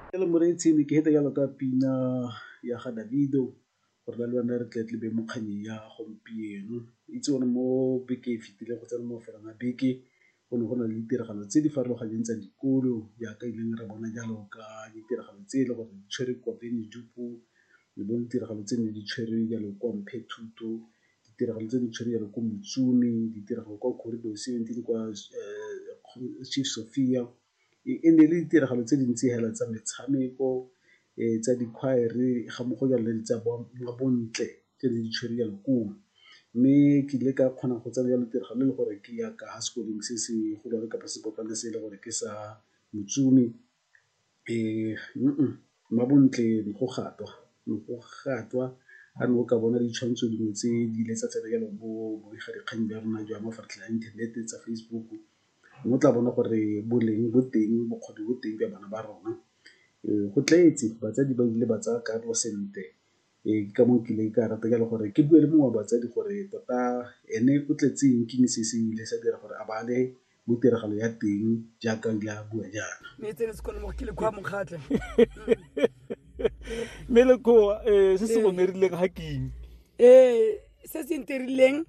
Ke le moreetsi ne ke fete jalo ka pina ya ga Davido gore na le wena re tle tlebe mo kgannyeng ya gompieno. Itse o ne mo bekeng e fitileng go tsena mo mafelong a beke go ne go na le ditiragalo tse di farologaneng tsa dikolo jaaka e leng re bona jalo ka ditiragalo tse e le gore di tshwere kwa Vryburg le bo ditiragalo tse ne di tshwere jalo kwa Mphethuto ditiragalo tse di tshwenyang ko Motšoni, ditiragalo kwa Corridor seventeen kwa Chief Sophia. E ne e le ditiragalo tse di ntsi fela tsa metshameko, tsa di-choir-re ga mmogo jalo le tsa bontle tse di tshwere jalo ko o. Mme ke ile ka kgona go tsena jalo tiragalo e le gore ke ya ka ha sekolong se se golwane kapa sepotlana se e le gore ke sa Motšoni. mmabontle go gatwa, ne go gatwa ha ne o ka bona ditshwantsho dingwe tse di ile tsa tsena jalo bo bobegadikgang jwa rona jwa mafaratlhatlha a inthanete tsa Facebook, mo o tla bona gore boleng bo teng, bokgoni bo teng jwa bana ba rona. Go tletse, batsadi ba ile ba tsaya karolo sentle Ee, ke ka moo ke ileng ka rata jalo gore ke bue le mongwe wa batsadi gore tota ene o tletse eng, ke eng se se ileng sa dira gore a bale mo tiragalo ya teng jaaka o ile a bua jaana. Mme lekgowa se se go nerileng ga keng? se se ntirileng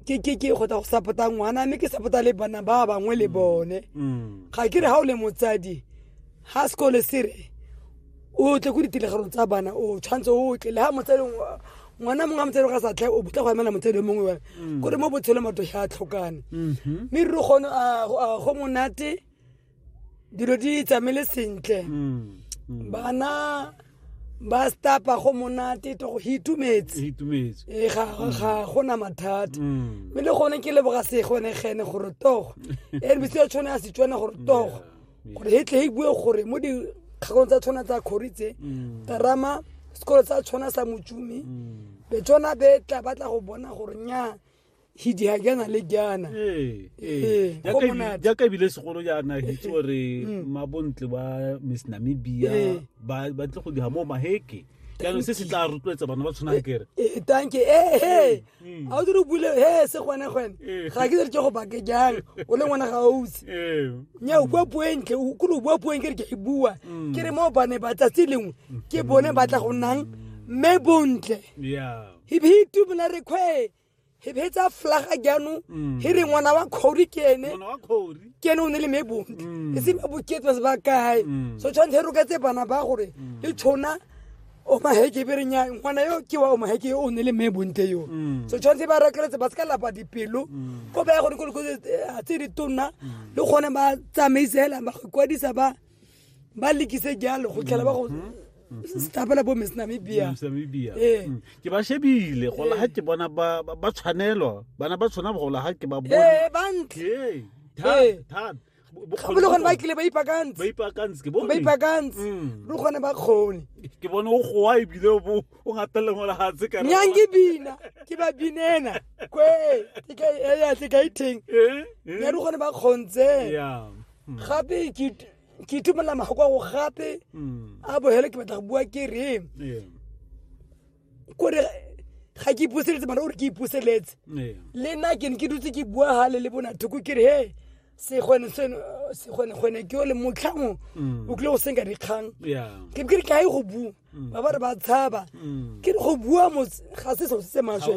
ke ke ke go tla go sapota ngwana mme ke sapota le bana ba bangwe le bone Mm. ga ke re ga o le motsadi ga sekole se re o tle ko ditiragalong tsa bana o tshwanetse o tle le ga motsadi ngwa- ngwana mongwe a motsadi ga sa tlhe o botla go emela motsadi o mongwe wa kore mo botshelong batho ga a tlhokane Mhm. mme re kgone a go monate dilo di tsamaile sentle mm, mm. bana ba stapa go monate to go itumetse itumetse e ga ga gona mathata mm. mme le gone ke leboga se gone gene gore togo e re bitse tshone a se tsone gore togo gore he tle e bue gore mo di kgakong tsa tshwana tsa khoritse mm. tarama sekolo tsa tshwana sa motsumi mm. be tsona be tla batla go bona gore nya hidi ha jana le jana ee ee Ee, go jaaka ebi- monate. jaaka ebile segolo jaana hitse gore Mm. mabontle ba miss namibia Ee. ba ba tle go diga mo maheke jaanong se se tla rotloetsa bana ba tshwanang kere Eh, tanke ee he Mm. ga o dire o bule he se gone gone Ee. ga ke dire ke go bake jang o le ngwana ga ausi ee nya o bua puo e ntle o- kore o bua puo e nke re ke e bua Mm. ke re mo bane ba tsatsi lengwe ke bone ba tla go nnang mme bontle ya hibi hi tumela re kgwe he betsa flaga jaanong Mm. he re ngwana wa kgori ke ene Ngwana wa kgori. ke ene o ne le mebonte Mm. e se meboketso se ba kae Mm. so tshwanetse he roketse bana ba gore le tshona omaheke be re nya ngwana yo ke wa omaheke yo o ne le mebonte yo Mm. so tshwanetse ba rekeletse ba se ka lapa dipelo ko ba ya gone ko dikolo tse- tse di tonna le gone ba tsamaise hela ba go ikwadisa ba ba lekise jalo go tlhela ba go mm-hmm. stapela bo miss namibia ee. mm. ke ba shebile gola ga ke bona ba tshwanelwa bana ba tshwana gola ga ke ba bona ee, bantle bogone ba kile ba ipakantse ba ipakantse mm. le gone ba kgone ke bone o goa ebile o ngateleng go legatshe ka nyang ke bina ke ba binena kwe ke ka e yatle ka itheng eh, eh. ya le gone ba kgontse gape ke ke itumelela magoko a go gape Mm. a bogele ke batla go bua ke re Yeah. kore ga ke ipuseletse mara ore ke ipuseletse Yeah. le nna ke ne ke dutse ke bua gale le bona thoko ke re he segwenegwene ke o le motlhango Mm. o kile go senka dikgang Yeah. ke be ke re ke a ye go bua ba ba re ba tshaba ke re go bua motse ga se selo se se maswe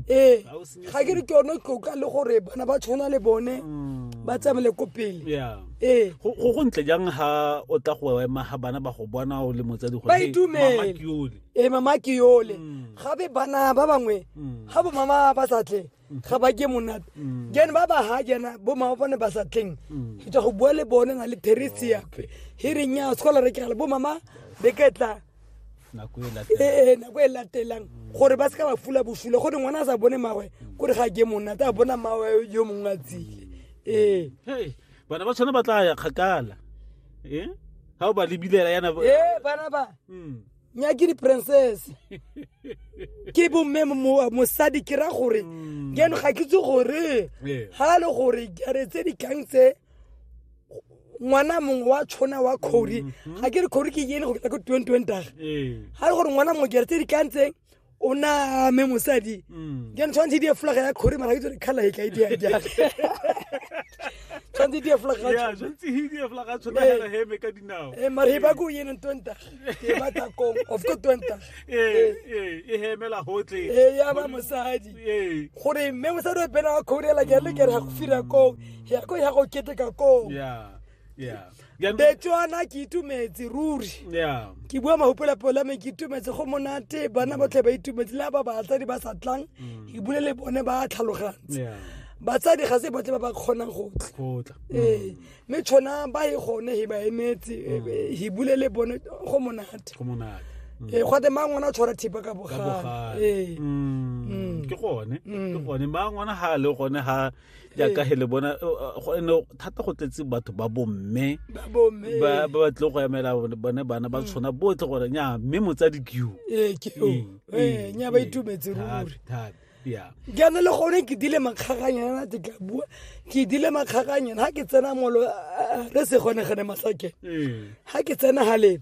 ee ga ke re ke yone tloka le gore bana ba tshwana le bone ba tsamele ko pele ee go go ntle jang ha o tla go ema ga bana ba go bona o le motsadi gore ba itumele ee mama ke yole gape bana ba bangwe ga bo mama ba sa tle ga ba ke monate then ba ba ha jana bo mama bone ba sa tleng ke tla go bua le bone na le theresia he reng ya sekolo re kegale bo mama be ke tla nako e latelang ee nako e latelang gore ba se ka ba fula bosula gore ngwana a sa bone mawe kore ga ke monate a bona mawe yo mongwe a tsile ee Hey, bana ba tshwana ba tla ya kgakala Eh? ga o ba lebilela yana bo- ee bana ba Mm. nyakiri princess ke bomme mo- mosadi ke ra gore Mm. jaanong ga ke itse gore Ee. ga le gore jare tse dikgang tse ngwana mongwe wa tshona wa kgori ga ke re kgori ke yene go fitlha ko twenty twenty daga Mm-hmm. Ee. ga le gore ngwana mongwe jare tse dikgang tse o name mosadi mm. then tshwanetse di efolaga ya kgore mara itse re kgala e tla ite ya jang tshwanetse di efolaga ya tshwanetse hi di efolaga tshwanetse eh. ga heme ka dinao eh mara ba go yena ntwenta ke ba ta kong of go twenta eh eh e hemela hotle eh ya ba mosadi eh gore mme mosadi o pena wa khorela ke le ke re ga go fira kong ya go ya go keteka kong yeah yeah betswana ke itumetse ruri yeah ke bua mahopola pola me ke itumetse go monate bana mm. botlhe ba itumetse le ba batsadi ba sa tlang mm. ke bule le bone ba tlhalogantse yeah batsadi ga se botle ba ba kgonang go tla ee mm. mme tshwana ba e gone he ba emetse he bule le bone go monate ee gate mang ona tshwara thipa ka bogale ee ke gone ke gone mang ona ga le gone ga jaaka he le bona go ene thata go tletse batho ba bomme ba ba tle go emela bone bana ba mm. tshwana botlhe gore nya mme motsadi keo ee, mm, ee, mm, nya ba itumetse ruri jaana le gone ke dile makgaganyana te ka bua ke dile makgaganyana ga ke tsena molo re se gone gane masake ga ke tsena galeng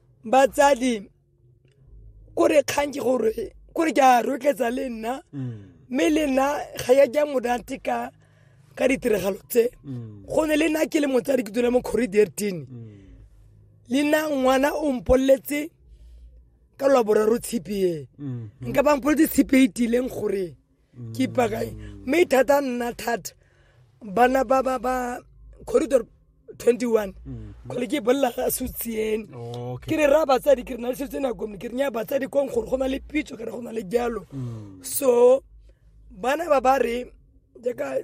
batsadi ko re kgang ke gore ko re ke a rotletsa le nna mme le nna ga ya ja monate ka ka ditiragalo tse go ne le nna ke le motsadi ke dula mo corridortene le nna ngwana o mpoleletse ka lwa boraro tshipi e nka ba mpoletse tshipi e itileng gore ke ipakae mme e thata nna thata bana ba ba ba corridor 21 kgole ke bolela ga sutsiene ke re raya batsadi ke re na le setse nakome ke re nya batsadi kong gore go na le pitso ke re go na le jalo so bana ba ba re jaaka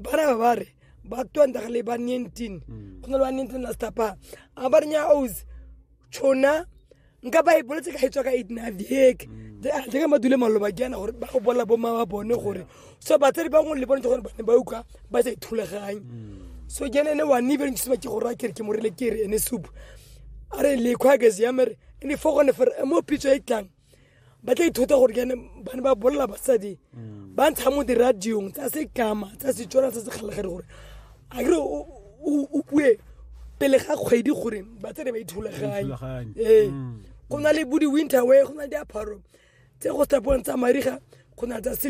bana ba ba re ba twantagale ba nineteen go na le ba nineteen la stapa a ba re nya ose tšhona nka ba e boletse ka e tswa ka eight and a half diheke jeka madule maloba ke yana gore ba go bolela bo mama bone gore so batsadi ba ngwe le bone gore bane ba utlwa ba sa ithulaganye so ke ene ene wa ne ebele ntshima ke gore a kere ke morile kere ene soup a re lekgwa ke seamere ene fo gone fore mo pitso e tlang ba tla ithuta gore kene ba ne ba bolela basadi mm. ba ntsha mo diradiong tsa sekama tsa setswana tsa sekgalegare gore a kere o bue pele ga kgwedi gore batsadi ba ithulaganye ee mm. go na le bodi winter way go na le diaparo tse go tsa mariga go na tsa